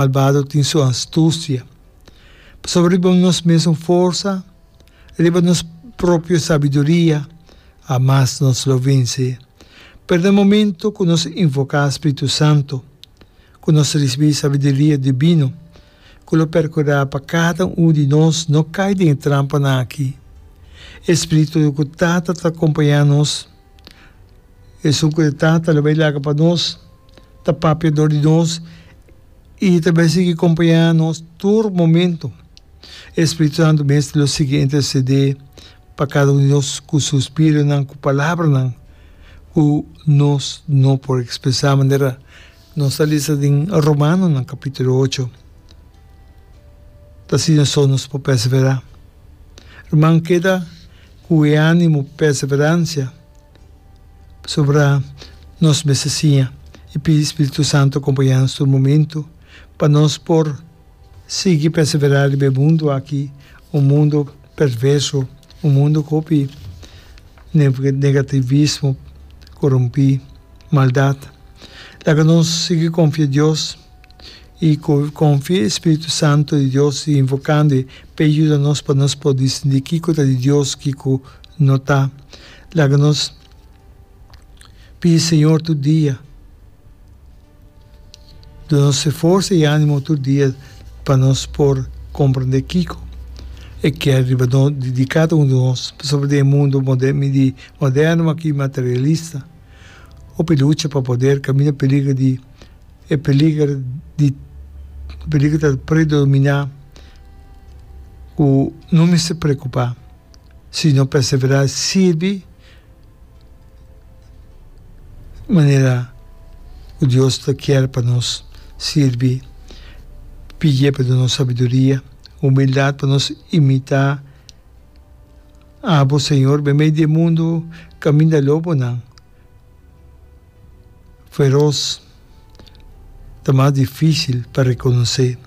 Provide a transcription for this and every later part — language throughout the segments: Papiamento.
Malbado tin su astusia. Pasobra riba nos mesun forsa, riba nos propio sabiduria, a mas nos lo vense. Pero den momento cu nos invoca Spiritu Santo, cu nos ricibi sabiduria divino cu lo percura pa cada un di nos no cay den e trampanan aki, e Spiritu cu ta ta ta acompaña nos, Esun ku e Tata lo bai laga pa nos, ta papia dor di nos i ta bai sigui kompañá nos tur momentu. E Spiritu Santu mester lo sigui intersedé pa kada un di nos ku suspironan, ku palabranan ku nos no por ekspresá, manera nos a lesa den Romanonan kapítulo ocho. Ta asina so nos por pèseverá. Ruman, keda ku e ánimo pèseveransia. Pasobra nos mester siña i pidi spiritu santu kompañanos tur momentu pa nos por sigui perseverá riba e mundu aki, un mundu perverso, un mundu ku hopi negativismo, korumpí, maldat. Laga nos sigui konfia Dios i konfia e spiritu santu di Dios i invokando e p'e yuda nos pa nos por distingui kiko ta di Dios kiko no ta. Laga nos pidi Señor tur dia. Duna nos e forsa i animo tur dia pa nos por komprendé kiko e kier riba di kada un di nos pasobra den e mundu moderno aki materialista hopi lucha pa poder kaminda peliger di e peliger di peliger ta predominá ku no mester preokupá. Si no perseverá sirbi manera ku Dios ta kier pa nos sirbi, pidié pa duna nos sabiduria, humildat pa nos imitá abo Señor, bai mei di e mundu kaminda lobonan. feros ta mas difícil pa reconocé.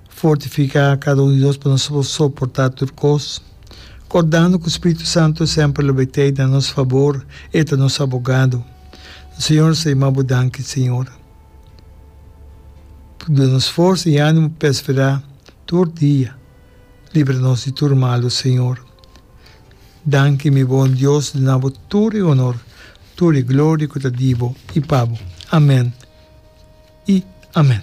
Fortifica cada un di nos pa nos por soportá tur cos, cordando cu Spiritu Santo semper lo betei na nos fabor, e ta nos abogado. Señor, sa yama bo danki, Señor, por duna nos forsa y animo pa perseverá tur dia. Libra nos di tur malu, Señor. Danki mi bon Dios, duna bo tur e honor, tur e gloria cu ta di bo y pa bo. Amen y amen.